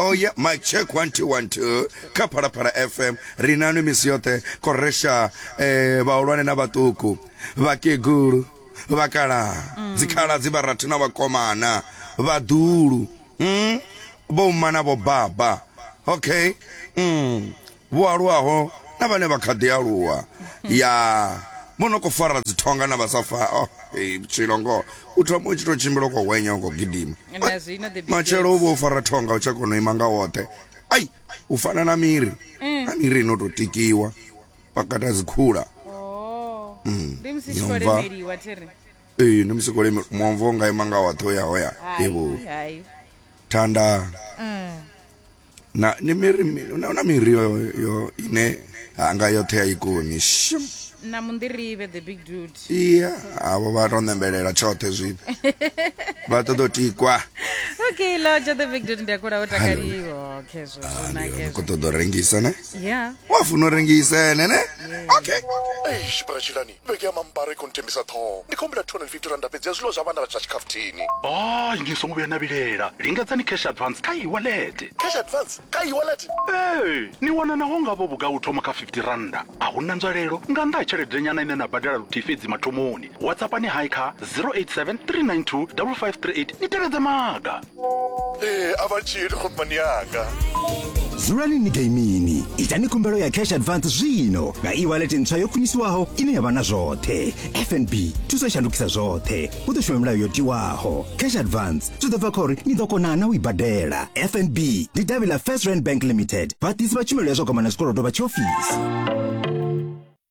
Oh yeah, my check one two one two kha Phalaphala FM ri na nwe misi yoṱhe koresha eh vhahulwane na vhaṱuku vhakegulu vhakala mm. dzikhala dzi vharathu na vhakomana vhaḓulu mm? vho mma na vho baba okay mm. vho aluwaho na vhane vha kha ḓi aluwa ya vho no khou fara dzithonga na vha sa fa oh, hey, vhutshilo ngoho u thoma u tshi tou tshimbila u khou hwenya u khou gidima Na zwino the big matshelo u girls. vho u fara thonga u tsha kona u ima nga woṱhe ai u fana na miri na miri ino tou tikiwa pakata dzikhula Oh. Ndi musi tshi khou Yomva. lemeliwa thiri. ee ndi musi kolemi muomvo nga ima nga woṱhe u ya hoya Hai, evo hai. thanda Mm. na ni miri na na miri yo yo ine hanga yoṱhe ya ikoni shum na munḓirivhe the big dude iya avho vha to nembelela tshoṱhe zwino vha ṱoḓa u tikwa okay loja the big dude ndi a kula o takaliwa okay zwo zwo Ah, ndi- ni khou nake ṱoḓa u rengisa ne yeah wa funa u rengisa ene ne okay Eish, bra Tshilani. Vhege ya mambara i khou ntembisa ṱhoho. Ndi khou humbela 250 rannda fhedzi ya zwiḽiwa zwa vhana vha tsha tshikhafuthini. Hai, ni songo vhuya na vhilela. Lingedzani cash advance kha e-wallet. Cash advance kha e-wallet? Ee, ni wana naho nga vho vhugai u thoma kha 50 rannda. A hu na nzwalelo nga nnḓa ha tsheledenyana ine na badela luthihi fhedzi mathomoni. WhatsAppani hai kha 087 392 5538 ni tevhedze maga. ee a vha tshili khomani yanga dzulani ni gaimini itani khumbelo ya cash advance zwino nga e-wallet ntswa yo khwiniswaho ine ya vha na zwoṱhe fnb thuso i shandukisa zwoṱhe hu ḓo shuma milayo yo tiwaho cash advance zwi ḓo bva kha uri ni ḓo kona na u i badela fnb ndi davhi ḽa first rand bank limited vhaḓisi vha tshumelo ya zwa gwama na zwikolodo vha tshiofisi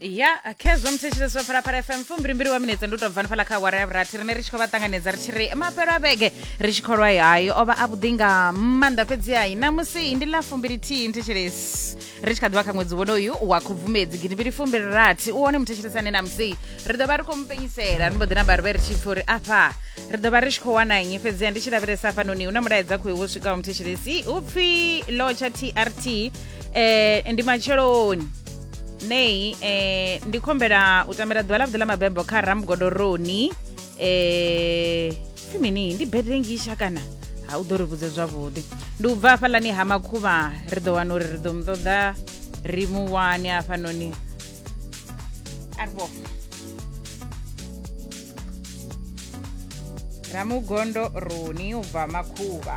ya khezwo musi tshi zwo fara fara fm fumbilimbili wa minetse ndi u tobva nifhala kha awara ya vhurathi rine ri tshi khou vha ṱanganedza ri tshi ri mafhelo a vhege ri tshi kholwa hayi o vha a vhuḓi nga maanḓa fhedzi hayi namusi ndi ḽa fumbilithihi nthetshelesi ri tshi kha ḓivha kha ṅwedzi wonoyu wa khubvumedzi gidimbili fumbili rathi u wone muthetshelesi ane namusi ri ḓo vha ri khou mupenyisela ri mbo ḓi namba ri vhe ri tshi pfhi uri afha ri ḓo vha ri tshi khou wana nnyi fhedziha ndi tshi lavhelesa hafhanoni hu na mulaedza khoi wo swikaho muthetshelesi hu pfhi lotsha trt um ndi matsheloni nei eh, ndi khombela u tamela ḓuvha ḽa vhuḓi ḽa mabebo kha ramgodoroni eh, pfi mini ndi birthday ngisha kana ha u ḓo ri vhudze zwavhuḓi ndi u bva hafhaḽani ha makhuvha ri ḓo wana uri ri ḓo mu ṱoḓa ri mu wane hafhanoni arvo ramugondo roni u bva makhuvha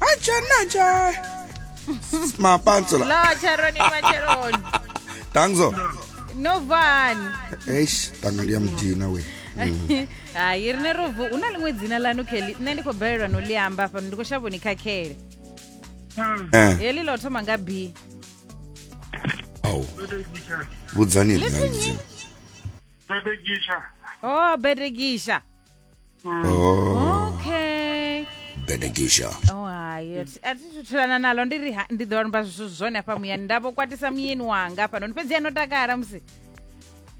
Acha nacha. Mapantsula. La Charoni Macharoni. Tangzo. No van. Eish, tanga ndi ya mdina we. Hayi rine rovu una limwe dzina lanu Kelly. Nṋe ndi khou balelwa no ḽi amba fhano ndi khou shavha ni khakhele. Eh, Heḽi ḽo thoma nga B. au. Vhudzani Listen nṋe. Bebegisha. Oh, Bedekisha. Oh. okay benekisha oh hayi ati- atithuthulana nalo ndiri ha- ndi ḓo amba zwithu zwone hafha muyani ndavho kwatisa muyeni wanga hafha noni fhedzi ano takala musi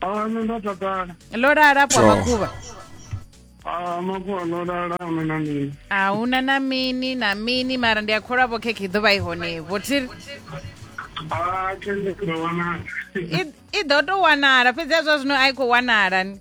Ah, nṋe ndo takala ḽo lala pwa Sure. makhuvha Ah, makuwa ndo lala ame na mini a hu na na mini na mini mara ndi a kholwa vho khekhe i ḓo vha i honevo thiri Ah, khende ndo wanala I- i ḓo tou wanala fhedzi a zwa zwino a i khou wanala ni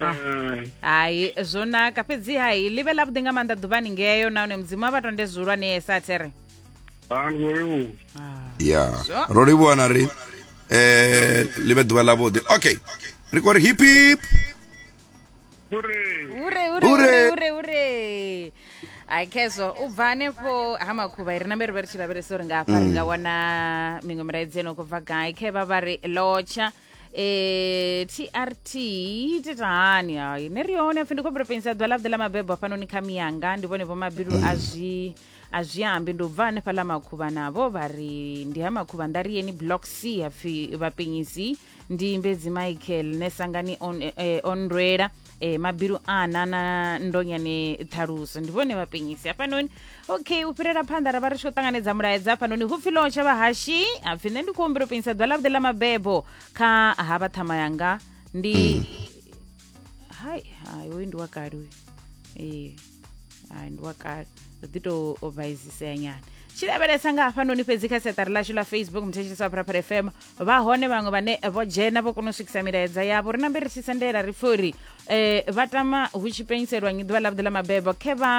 Ah. Mm. hai zwo naka fhedzi hai ḽi vhe ḽavhuḓi nga maanḓa ḓuvhani ngeyo nahone mudzimu a vha tonde zwihulwanesa there Ah, ndi khou livhuwa. ya Zwo. ro livhuwa na ri eh ḽi vhe ḓuvha ḽavhuḓi okay ri khou ri hip hip Uri, hure hure Hure. hure hure hure hai khezwo u bva hanefho ha makhuvha ri nambe ri vhe ri tshi lavhelesa uri ngafha ri nga wana miṅwe milaedzi eno khou bva gai khe vha vha ri lotsha Eh, trt tita hani hayi ni ri yone pfi ndi khou pensa ḓuvha ḽa vhuḓe ḽa mabebo hafhanoni kha miyanga ndi vhone vho mabilu a zwi a zwi ambi ndi u bva hanefha ḽa makhuvha navho vha ri ndi ha makhuvha nda ri yeni block c hapfi vhapenyisi ndi mbedzi michael ne sangani on, eh, onrwela eh, mabilu ana na ndonyani ṱhaluso ndi vhone vhapenyisi hafhanoni okay u fhirela phanḓa ra vha ri tshi khou ṱanganedza mulaedza hafhanoni hu pfi lotsha vhahashi ha pfi nṋe ndi khou humbela u penyisa ḓuvha ḽavhuḓi ḽa mabebo kha ha vha ṱhama yanga ndi hai hai uyu ndi wa kale uyu ee hai ndi wa kale ri ḓi tou vhaisisea nyana tshi lavhelesa nga hafhanoni fhedzi kha siaṱari lashu ḽa facebook muthetshelesi wa pharapara fm vha hone vhaṅwe vhane vho dzhena vho kona u swikisa milaedza yavho ri nambe ri tshi sendela ri pfhe uri um vha tama hu tshi penyiselwa nyi ḓuvha ḽavhuḓi ḽa mabebo khe vha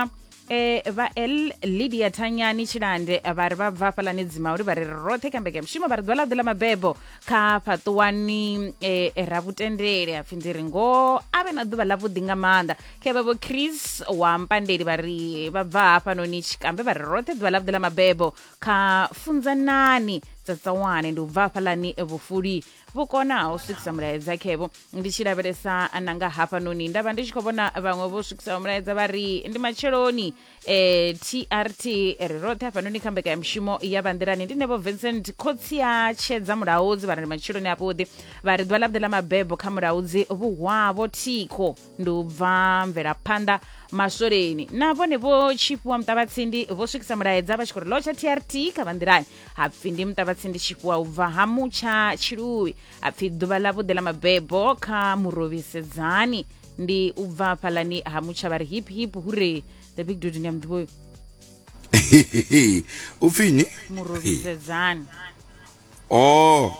eh vha el lydia thanyani tshilande vha ri vha bva hafhalani dzimauli vha ri ri roṱhe kha mbeke mushumo vha ri ḓuvha ḽa ḓi ḽa mabebo kha fhaṱuwani eh ra vhutendele hapfi ndi ri ngoho a vhe na ḓuvha ḽavhuḓi nga maanḓa khevha vho chris wa mpandeli vha ri vha bva hafhanoni tshikambe vha ri roṱhe ḓuvha ḽavhuḓi ḽa mabebo kha funzanani tsatsawane ndi u bva hafhaḽani vhufuli vhu kona u swikisa mulaedza khevo ndi tshi lavhelesa nanga hafhanoni nda vha ndi tshi khou vhona vhaṅwe vho swikisaho mulaedza vha ri ndi matsheloni eh, trt ri roṱhe hafhanoni kha mbekanyamushumo ya vhanḓilani ndi nevo vincent khotsi ya tshedza mulaudzi vha ri ndi matsheloni avhuḓi vha ri ḓuvha ḽavhuḓi ḽa mabebo kha mulaudzi vhuhwavho thikho ndi u bva mvelaphanḓa maswoleni na vhone vho tshifhiwa muṱavhatsindi vho swikisa mulaedza vha tshi khou ri lotsha trt kha vha nḓilani hapfi ndi muṱavhatsindi tshifhiwa u bva ha mutsha tshilui hapfi ḓuvha ḽa vhuḓe ḽa mabebo kha murovhisedzani ndi u bva fhalani ha mutsha vha ri hip hip hure the big dude ndi a muḓivhoyo upfini murovhisedzani oh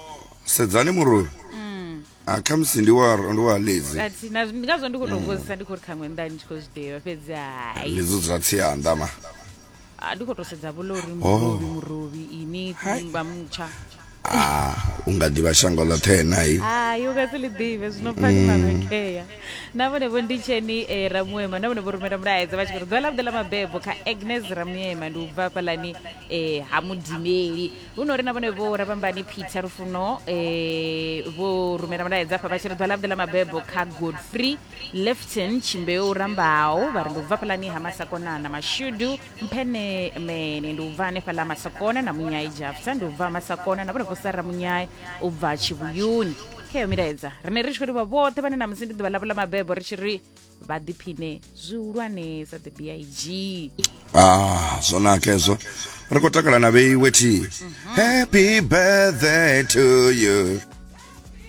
sedzani murori mm. ah, khamusi ndi wa ndi wa ledzi ati na ndi ngazwo ndi kho to vhozisa ndi kho ri khaṅwe nda ndi kho zwiḓivha fhedzi hai ledzi zwa tsianda ma ah, ndi kho to sedza vho lori murovi oh. murovi ini kumba mutsha ah u nga ḓivha shango ḽoṱhe nayi hai u nga si ḽi ḓivhe zwino pfani mm. marekhea na vhone vho ndi tsheni e eh, ramuema na vhone vho rumela mulaedza vha tshi kuri ḓuvha ḽa vhuḓe ḽa mabebo kha agnes ramuema ndi u bva fhalani e eh, ha mudimeli hu no ri na vhone vho ravhambani peter lufuno eh, vho rumela mulaedza afha vha tshi ri ḓwa ḽavhuḓi ḽa mabebo kha godfrey lefton tshimbeu rambaho vha ri ndi u bva fhalani ha masakona na mashudu mphene mene ndi u bva hanefha ḽa masakona na munyai jafta ndi u bva masakona na vhone vho sara munyai u bva tshivhuyuni kheyo milaedza rine ri tshi khou livha vhoṱhe vhane na musi ndi ḓuvha ḽavho ḽa mabebo ri tshi ri vha ḓiphine zwihulwanesa the big ah zwo naka hezwo ri khou takala na vheiwe thi happy birthday to you